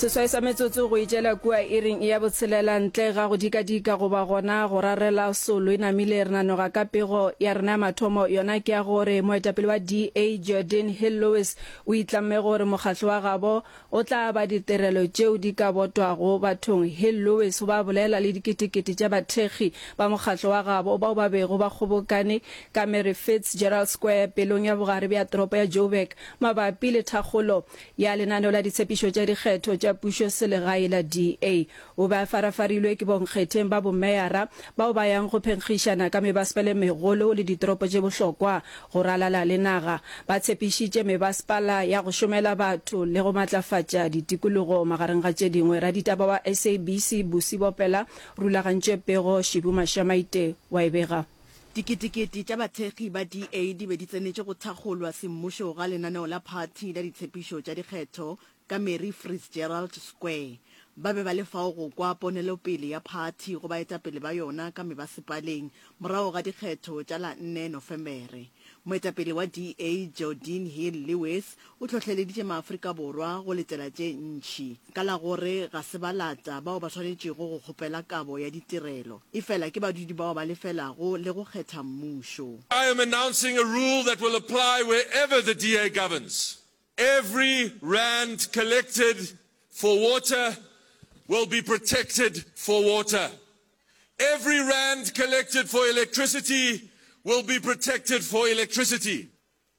seswai sa metsotso go itšela kua iring ya botshelela ntle ga go dikadika goba gona go rarela solo e namile re nanoga ka pego ya rena ya mathomo yona ke ya gore moetapele wa da jordan hill lewis o itlamme gore mokgatlo wa gabo o tla ba ditirelo tšeo di ka botwago bathong hill lewis o ba bolela le diketekete tša bathekgi ba mokgatlo wa gabo bao ba bego ba kgobokane ka mary fitzgerald square pelong ya bogare bja toropo ya joburg Mabapi le thakgolo ya lenaneo la ditshepišo tša dikgetho tša pušoselegae la DA, o be a farafarilwe ke bonkgetheng ba bomeyara bao ba yang go phenkgišana ka mebasepala e megolo le ditoropo tše bohlokwa go ralala le naga. Ba tshepišitše mebasepala ya go šomela batho le go matlafatša ditikologo, magareng ga tše dingwe. Raditaba wa SABC Busi Bopela rulagantše pego Shibu Mashamaite wa e bega. Diketekete tša bathekgi ba DA di be di tsenetše go thakgolwa semmušo ga lenaneo la phathi la ditshepišo tša dikgetho ka Mary Frizgerald Square. Ba be ba le fao go kwa ponelopele ya phathi go baetapele ba yona ka mebasepaleng morago ga dikgetho tša la nne Nofemere. Moetapele wa DA, Geordin Hill-Lewis, O hlohleleditše Maafrika Borwa go letela tše ntši ka la gore ga se balata bao ba swanetšego go kgopela kabo ya ditirelo, efela ke badudi bao ba lefelago le go kgetha mmušo. I am announcing a rule that will apply wherever the DA governs. Every rand collected for water will be protected for water. Every rand collected for electricity will be protected for electricity.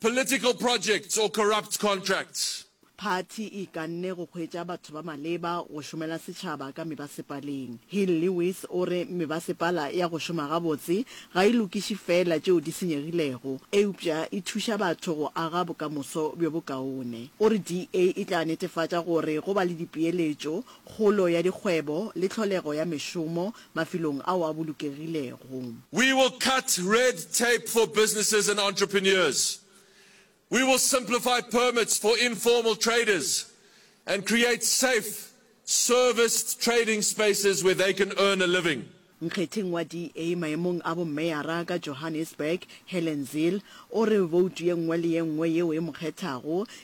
Political projects or corrupt contracts. Phathi e ikanne go hwetša batho ba maleba go šomela setšhaba ka mebasepaleng. Hill Lewis o re mebasepala ya go šoma gabotse ga e lokiše feela tšeo di senyegilego, eupša e thuša batho go aga bokamoso bjo bokaone. O re DA e tla netefatša gore go ba le dipeeletšo, kgolo ya dikgwebo le tlholego ya mešomo mafelong ao a bolokegilego. We will cut red tape for businesses and entrepreneurs. We will simplify permits for informal traders and create safe, serviced trading spaces where they can earn a living. Nkgetheng wa DA maemong a bomeyara ka Johannesburg, Helen Zille, o re boutu ye nngwe le ye nngwe yeo e mo kgethago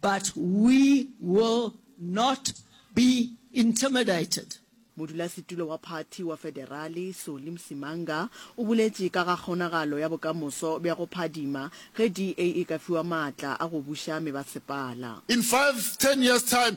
But we will not be intimidated. Modulasetulo wa phathi wa federale, Solly Msimanga, o boletše ka ga kgonagalo ya bokamoso bja go phadima ge DA e ka fiwa maatla a go buša mebasepala. In five, ten years time,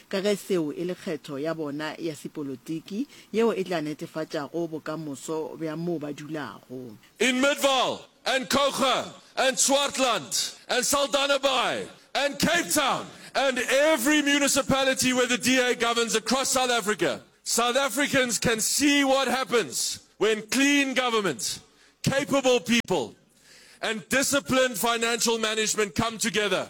ka ge seo e le kgetho ya bona ya sepolotiki yeo e tla netefatšago bokamoso bja moo ba dulago. In Midvaal and Coega and Swartland and Saldanhabaai and Cape Town and every municipality where the DA governs across South Africa, South Africans can see what happens when clean government, capable people and disciplined financial management come together.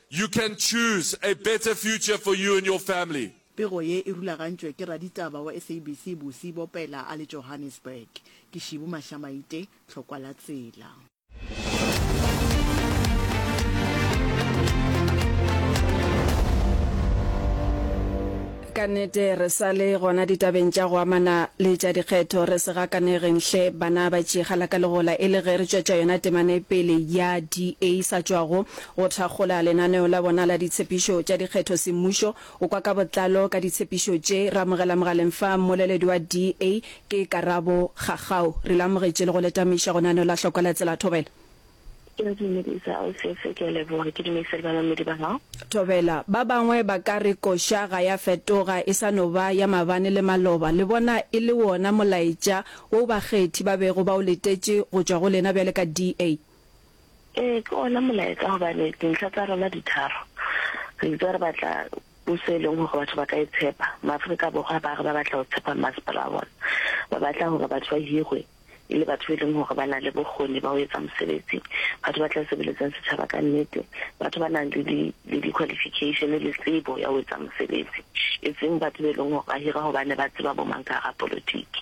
You can choose a better future for you and your family. Pego ye e rulagantšwe ke raditaba wa SABC Busi Bopela a le Johannesburg. Ke Shibu Mahlamaite, Tlhokwa la Tsela. Ka nnete re sa le gona ditabeng tša go amana le tša dikgetho, re se gakanegeng hle bana ba tšegalakalegola e le ge re tšwetša yona temanepele ya DA sa tšwago Go thakgola lenaneo la bona la ditshepišo tša dikgetho semmušo o kwa ka botlalo ka ditshepišo tše re amogela mogaleng fa mmoleledi wa DA ke Karabo Gagau. Re le amogetše le go le tameiša go naneo la hlokwa la Tsela Thobela. Ke a dumedisa Ausiethe, ke a leboga, ke dumedisa le bamamedi ba gago. Thobela, ba bangwe ba ka re koša ga ya fetoga e sa no ba ya mabane le maloba, le bona e le wona molaetša woo bakgethi ba bego ba o letetše go tšwa go lena bjale ka DA? Ee, ke ona molaetsa gobane dintlha tsa rona di tharo. Re itse re batla puso e leng gore batho ba ka e tshepa. Maaforika Borwa ba re ba batla go tshepa mmasepala wa bona. Ba batla gore batho ba hirwe e le batho ba e leng gore ba na le bokgoni ba go etsa mosebetsi, batho ba tla sebeletsang setšhaba ka nnete, batho ba nang le le di-qualification le tsebo ya go etsa mosebetsi, e seng batho ba e leng gore ba hirwa gobane ba tseba bo mang ka ga polotiki.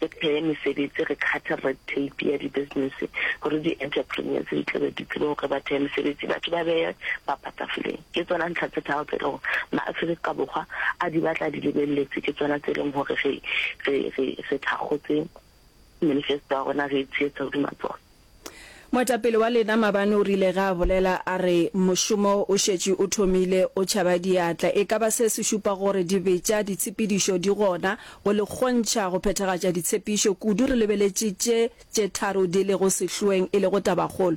re pheye mesebetsi, re cut-e red tape ya di-business gore di-entrepreneurs di tla be di tsebe gore ba theye mesebetsi, batho ba beye papa tafoleng. Ke tsona ntlha tse tharo tse e le gore ma-Afrika Borwa a di batla a di lebeletse, ke tsona tse e leng gore re thakgotse manifesto ya rona re e tsheetsa hodima tsona. Moetapele wa lena mabane o rile ge a bolela a re, Mošomo o šetše o thomile, o tšhaba diatla. E ka ba se se šupa gore dibetša, ditshepedišo di gona go le kgontšha go phethagatša ditshepišo, kudu re lebeletše tše tše tharo di lego sehloeng e lego tabakgolo.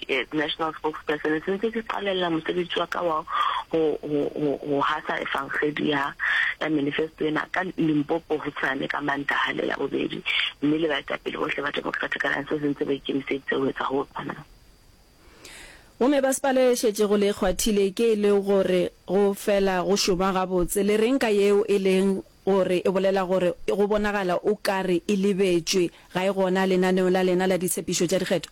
Ke National Spokesperson, se ntse ke qalelela mosebetsi wa ka wa ho, ho, ho, ho hasa efangedi ya, ya manifesto ena ka Limpopo hosane ka Mantaha le Labobedi, mme le baetapele bohle ba Democratic Alliance se ntse ba ikemiseditse ho etsa ho tshwanang. Gomme ba sepala e šetšego le e kgwathile ke e le gore go fela go šoma gabotse. Le reng ka yeo e leng gore e bolela gore go bonagala o ka re e lebetšwe, ga e gona lenaneong la lena la ditshepišo tša dikgetho?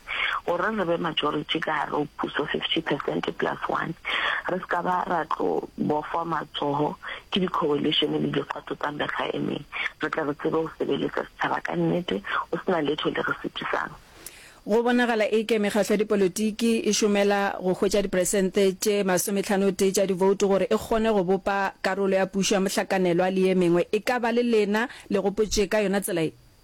gore re be majority ka gare go puso, fifty percent plus one, re se ka ba ra tlo bofwa matsogo ke di-coalition le dikgato tsa mekga e meng, re tle re tsebe go sebeletsa setšhaba ka nnete go se na letho le re sitisang. Go bonagala e ke mekgatlo ya dipolotiki e šomela go hwetša diperesente tše masomethanotee tša divoutu gore e kgone go bopa karolo ya pušo ya mohlakanelwa le ye mengwe. E ka ba le lena le gopotše ka yona tsela ye?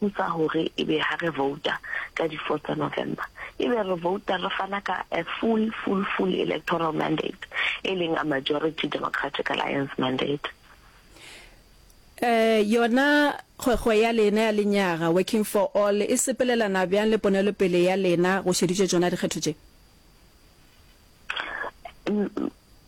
Ke sa gore e be ha re vouta ka di four tsa November e be re vouta re fana ka a full full full electoral mandate e leng a majority Democratic Alliance mandate. Eh, yona kgwekgwe ya lena ya lenyaga Working for All e sepelelana bjang le ponelopele ya lena go šeditšwe tšona dikgetho tše?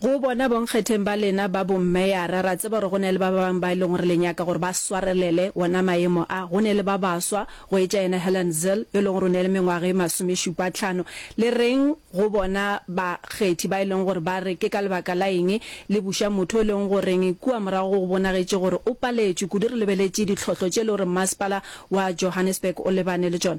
Go bona bonkgetheng ba lena ba bommeyara, ra tseba gore go na le ba ba bangwe ba e leng gore le nyaka gore ba swarelele wona maemo a. Go ne le ba baswa, go etša yena Helen Zille, yo e lego gore o ne le mengwaga e masomešupatlhano. Le reng go bona bakgethi ba e lego gore ba re ke ka lebaka la eng le buša motho yo e lego goreng kua morago go go bonagetše gore o paletšwe kudu re lebeletše ditlhohlo tše e lego gore Mmasepala wa Johannesburg o lebane le tšona?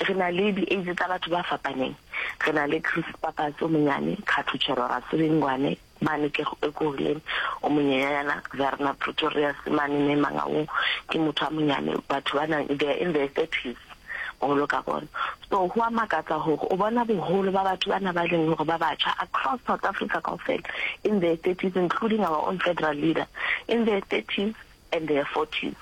Re na le di-age tsa batho ba fapaneng. Re na le Chris Pappas o monyane, Khathuchero Rasilingwane, mane Kego Ekurhuleni o monyenyanyana, Verna Pretorius mane ne Mangaung ke motho a monyane. Batho ba na they are in their thirties boholo ka bona. So ho a makatsa hore o bona boholo ba batho ba na ba leng hore ba batjha across South Africa kaofela in their thirties including our own federal leader in their thirties. and their fortune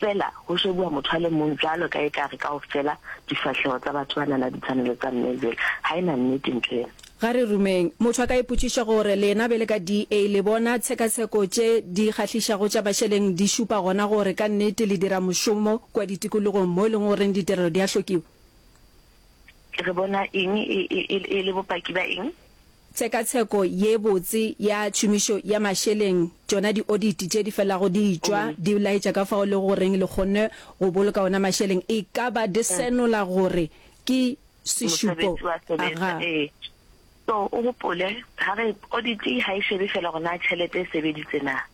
fela go šebuwa motho a le mong bjalo ka e ka re kaofela difahleho tsa batho ba na na ditshwanelo tsa mme bjale ga e na nnete ntho ena. Ga re rumeng. Motho a ka ipotšiša gore lena bele ka DA le bona tshekatsheko tše di kgahlišago tša Basheleng di šupa gona gore ka nnete le dira mošomo kua ditikologong mo e leng goreng ditirelo di a hlokiwa? Re bona eng e le bopaki ba eng? Tshekatsheko ye botse ya tšhomišo ya mašeleng, tšona dioditi tše di felago di tšwa di laetša ka fao e lego goreng le kgonne go boloka ona mašeleng, e ka ba di senola gore ke sešupo ga. So o gopole, ga re oditi ga e šebe fela gore na tšhelete e sebeditse na.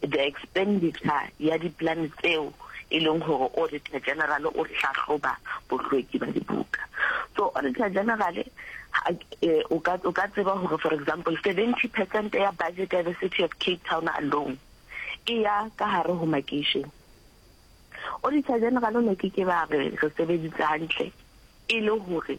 The expenditure ya diplan tseo e leng gore Auditor General o hlahloba bohlweki ba dibuka. So Auditor General o ka o ka tseba gore for example 70 percent ya budget ya the City of Cape Town alone e ya ka hare ho makeishene. Auditor General o ne ke ke ba re re sebeditse hantle e le gore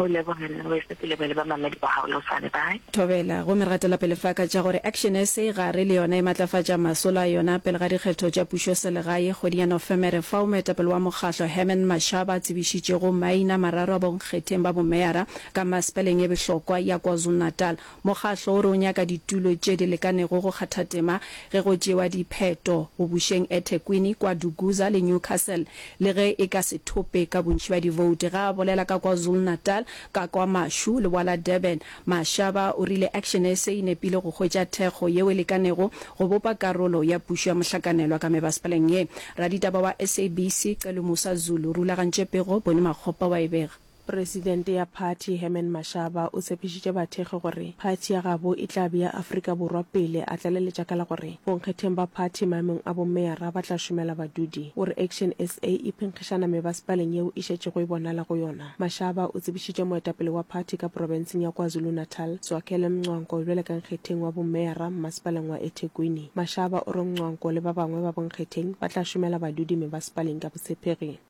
Go leboga nna weso ke leboge le bamamedi ba gago le go sa re bye. Thobela, gomme re gatela pele faka tša gore Action sa gare le yona e matlafatša masolo a yona pele ga dikgetho tša pušoselegae kgweding ya Nofemere fao moetapele wa mokgahlo Herman Mashaba a tsebišitšego maina mararo a bonkgetheng ba bomeyara ka Maspaleng e behlokwa ya KwaZulu-Natal Mokgahlo o re o nyaka ditulo tše di lekanego go kgathatema ge go tšewa dipheto go bušeng eThekwini, KwaDukuza le Newcastle. Le ge e ka se thope ka bontši bja divouti ge a bolela ka KwaZulu-Natal, ka kwa mašu le bwa la Durban, Mashaba o rile Action SA e nepile go hwetša thekgo yeo e lekanego go bopa karolo ya pušo ya mohlakanelwa ka mebasepaleng ye. Raditaba wa SABC Celomusa Zulu o rulagantše pego Boni Makgopa wa e bega. Presidente ya phathi Herman Mashaba o tshepišitše bathekgi gore phathi ya gabo e tla bea Afrika Borwa pele, a tlaleletša ka la gore bonkgetheng ba phathi maemong a bommeara ba tla šomela badudi. O re Action sa e phenkgišana mebasepaleng yeo e šetšego e bonala go yona. Mashaba o tsebišitše moetapele wa phathi ka porofenseng ya KwaZulu-Natal, Zwakele Mncwanko bjale ka nkgetheng wa bommeara mmasepaleng wa eThekwini. Mashaba o re Mncwanko le ba bangwe ba bonkgetheng ba tla šomela badudi mebasepaleng ka botshepegi.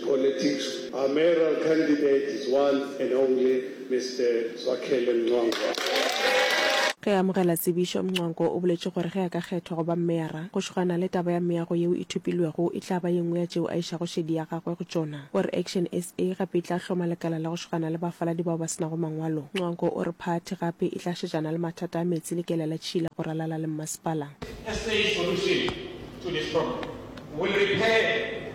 Politics, our mayoral candidate is one and only Mister Zwakhele Mncwango. Ge a amogela tsebišo, Mncwango o boletše gore ge a ka kgethwa go ba meyara, go šogana le taba ya meago yeo e thopilwego e tla ba ye nngwe ya tšeo a išago šedi ya gagwe go tšona. O re Action SA gape e tla hloma lekala la go šogana le bafaladi bao ba se nago mangwalo. Mncwango o re phathi gape e tla šetšana le mathata a meetse le kela la tšhila go ralala le mmasepala. SA solution to this problem will repair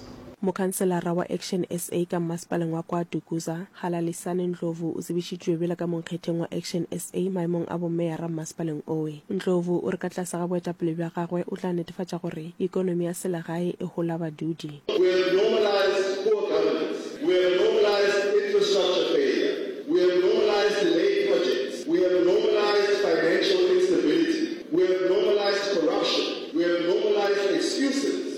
Mokhanselara wa Action SA ka mmasepaleng wa kwa Dukuza, Halalisani Ndlovu o tsebišitšwe bjalo ka monkgetheng wa Action SA maemong a bomeyara mmasepaleng owe. Ndlovu o re ka tlase ga boetapele bja gagwe o tla netefatša gore ekonomi ya selegae e hola badudi. We have normalized poor governance, we have normalized infrastructure failure, we have normalized delayed projects, we have normalized financial instability, we have normalized corruption, we have normalized excuses.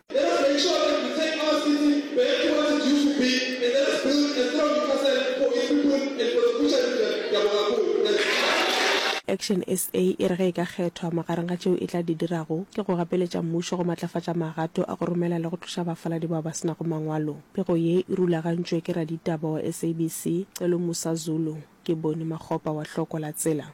Let us make sure that we take our city back to what it used to be and let us build a strong Newcastle for its people and for the future region. Ke a boga haholo. Thanks. Action SA e re ge e ka kgethwa, magareng ga tšeo e tla di dirago ke go gapeletša mmušo go matlafatša magato a go romela le go tloša bafaladi bao ba se nago mangwalo. Pego ye e rulagantšwe ke raditaba wa SABC, Celomusa Zulu. Ke Boni Makgopa wa Hloko la Tsela.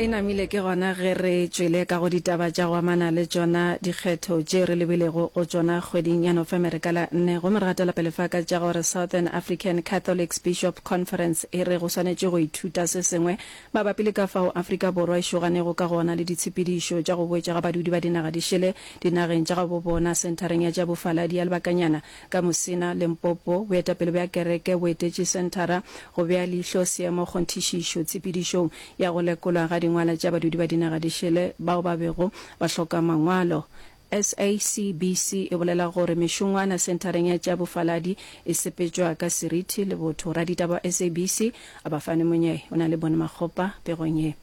e namile ke gona ge re tšwele ka go ditaba tša go amana le tšona dikgetho tše re lebilego go tšona kgweding ya nofemere ka la nne go meratela pele fa ka tša gore southern african catholics bishop conference e re go swanetše go ithuta se sengwe Mabapi le ka fao Afrika Borwa e šoganego ka gona le ditshepedišo tša go boetša ga badudi ba dinaga di šele dinageng tša gabo bona, Senthareng ya tša Bofaladi ya Lebakanyana ka Musina, Limpopo, boetapele bja kereke bo etetše senthara go bea leihlo seemo kgonthišišo tshepedišong ya go lekolwa ga dingwala tša badudi ba dinaga di šele bao ba bego ba hloka mangwalo SACBC e bolela gore mešongwana senthareng ya tša bofaladi e sepetšwa ka seriti le botho. Raditaba wa SABC, Abafane Monyei, o na le ponomakgopa pegong ye.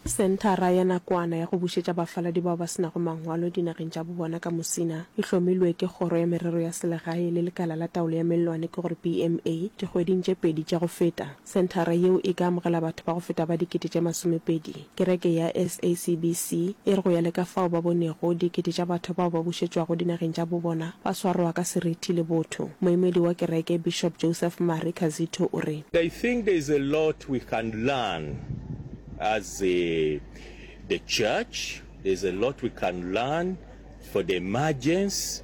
Senthara ya nakwana ya go bušetša bafaladi bao ba se nago mangwalo dinageng tša bo bona ka Musina e hlomilwe ke Kgoro ya Merero ya Selegae le Lekala la Taolo ya Mellwane ke gore BMA dikgweding tše pedi tša go feta. Senthara yeo e ka amogela batho ba go feta ba dikete tše masomepedi. Kereke ya SACBC e re go ya le ka fao ba bonego, dikete tša batho bao ba bušetšwago dinageng tša bobona ba swaroa ka serithi le botho. Moemedi wa kereke, Bishop Joseph Mari Kazito o re. I think there is a lot we can learn as the church, there is a lot we can learn for the emergence.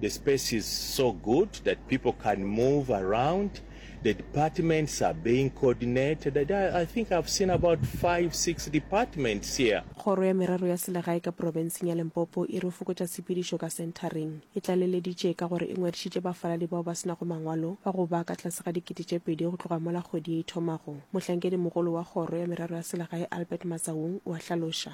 The space is so good that people can move around, the departments are being coordinated, I, I think I've seen about five, six departments here. Kgoro ya Merero ya Selegae ka Porobenseng ya Limpopo e re fokotša tshepedišo ka senthareng. E tlaleleditše ka gore e ngwadišitše bafaladi bao ba se nago mangwalo ba go ba ka tlase ga dikete tše pedi go tloga mola kgwedi ye e thomago. Mohlankedi mogolo wa Kgoro ya Merero ya Selegae Albert Matsaung o a hlaloša.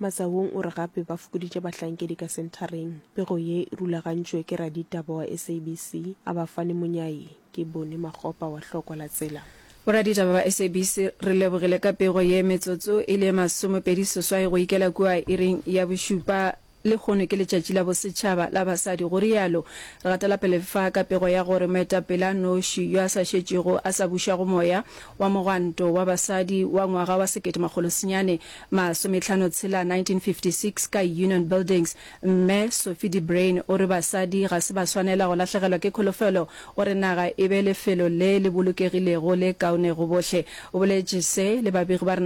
Matsawong o re gape ba fokoditše bahlankedi ka senthareng, pego ye e rulagantšwe ke raditaba wa SABC, Abafani Monyai, ke Boni Makgopa wa Hlokwa la Tsela. Boraditaba ba SABC re lebogile ka pego ye metsotso e le ye masomepedi seswai go ikela kua iring ya bošupa, lehono ke letšatši la bosetšhaba la basadi, go rialo Ratelapelefa ka pego ya gore moetapele a noši yo a sa šetšego a sa bušago moya wa mogwanto wa basadi wa ngwaga wa sekete makgolo senyane Masometlhano tshela 1956 ka Union Buildings, Mme Sophie de Bruyn o re basadi ga se ba swanela go lahlegelwa ke kholofelo. O re naga e be lefelo le le bolokegilego le kaone go bohle. O boletše se le babegi ba rena.